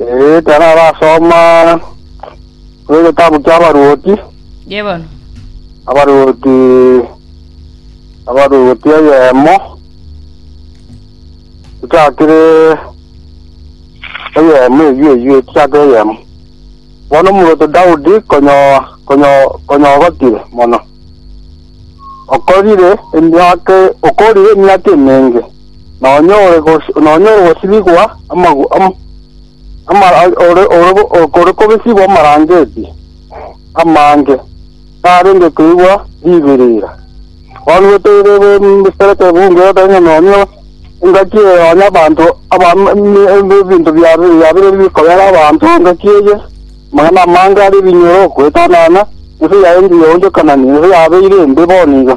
Ee, tararasoma egetabu ki'abaruoti, Ye bono. abaruoti abaruoti eyemo echakire eyemo eyio eyio echakire eyemo bono omuruoti Daudi konyo konyo konyogotire mono okorire emiaka okorire emiaka emenge nonya ore gos- nonya ore gosibigwa amagu am- ama- a- ore ore go- o- ore kobesigwa amarangeti amange, narenge koigwa ribirira. Bono gotebe mbisereke bunge oteba nonya engaki eye nonya abanto aba m- m- em- ebinto bia biabire bikobera abanto engaki eye, amang'ana amange are ebinyoro, goetanana, ense yaye engiya yaonchokanani, ense yabeire embe bono iga.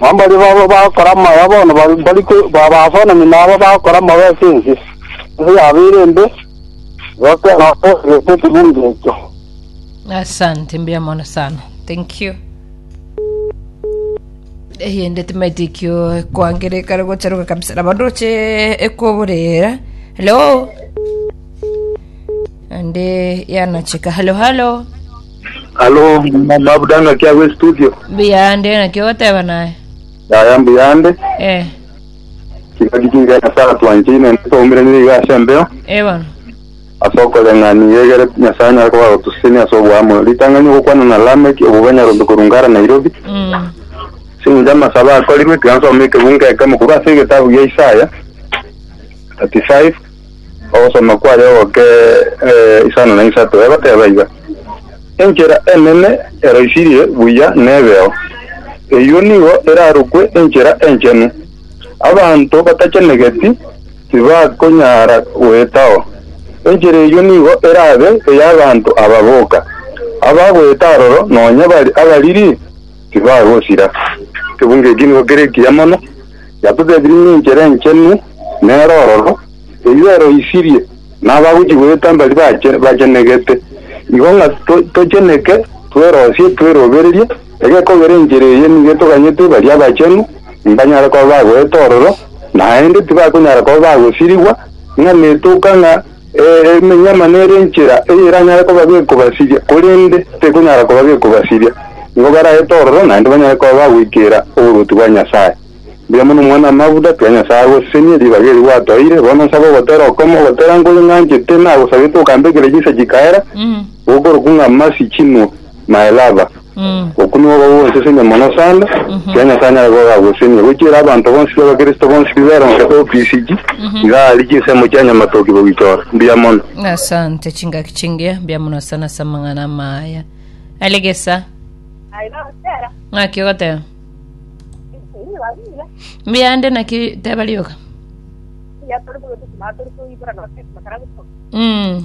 Nao mbaria baba bagokora amaya bono mbari babafanani naba bagokora amaya ase ense, ense yabeire embe, egoka enoka egete ekegundo ekio. Asante, mbuya mono sana. Thank you. eyende timaiti ekio kwangera ekare gocharuka kabisa na bandu oche ekoborera hello ande yanacheka hello hello Alo, ma- mabuda ng'aki agwo estudio. Mbuyande naki ogoteba naye. Yaya mbuyande. Eh, Kiba gikinga Nyasaye atwanchine ende twaumire nigo iga ase embeo. eh bono. Ase okoreng'ani iga egere Nyasaye anyare koba agotusesenia ase oboamo. Ritang'ani ogokwana na Lameki, obo banyarombe korunga ara Nairobi. Mm. Ase engencho amasabo akorirwe, tiga nsome ekebungo ekemo korwa ase egetabu gia Isaya 35. Ogosoma kwaye ogoke isano na isato egoteba iga, Enchera enene eroisirie buya nebeo, eyio nigo erarokwe enchera enchenu. Abanto batachenegeti tibakonyara goetao. Enchera eyio nigo erabe ey'abanto aba boka, abagoeta aroro nonya bari abariri tibagosira. Kebungo eki nigo kere ekiya mono. Yatotebirie ng'enchera enchenu nero ororo, eyio eroisirie, na abagochia goeta mbari bachenegete. Igo ng'a tocheneke, twerosie, twerobererie, egekogera enchera eye nigo etoganyete baria abachenu mbanyare koba bagoeta ororo, naende tibakonyara koba bagosirigwa, ng'a netoka ng'a Emenyama nere enchera eyeranyare koba gekobasiria, korende tekonyara koba gekobasiria. Nigo baraete ororo naende banyare koba bagoikera oboruoti bwa Nyasae. Mbuya mono Omwana-o-maguta, tiga Nyasae agosesenie ribaga eri gwatoeire. Bono nsabe ogotera okomo, ogotera nkore ng'anchete, nagosabete okambekera chinsa chikaera, gokorokwa ng'a masi chinwe. Mae Laba. Okwo nigo gogosesenia mono sana, ekiagera Nyasae nere igo ogagosesenia. Gochiera abanto bonsi b'Abakristo bonsi biberonkete obisiki, iga aria chinsemo chia nyamatoki bogichora. Mbuya mono. Asante chingaki chingiya mbuya muno sana ase amang'ana amaya alegesa ng'aki ogoteba mbuya ande naki teba rioka mm.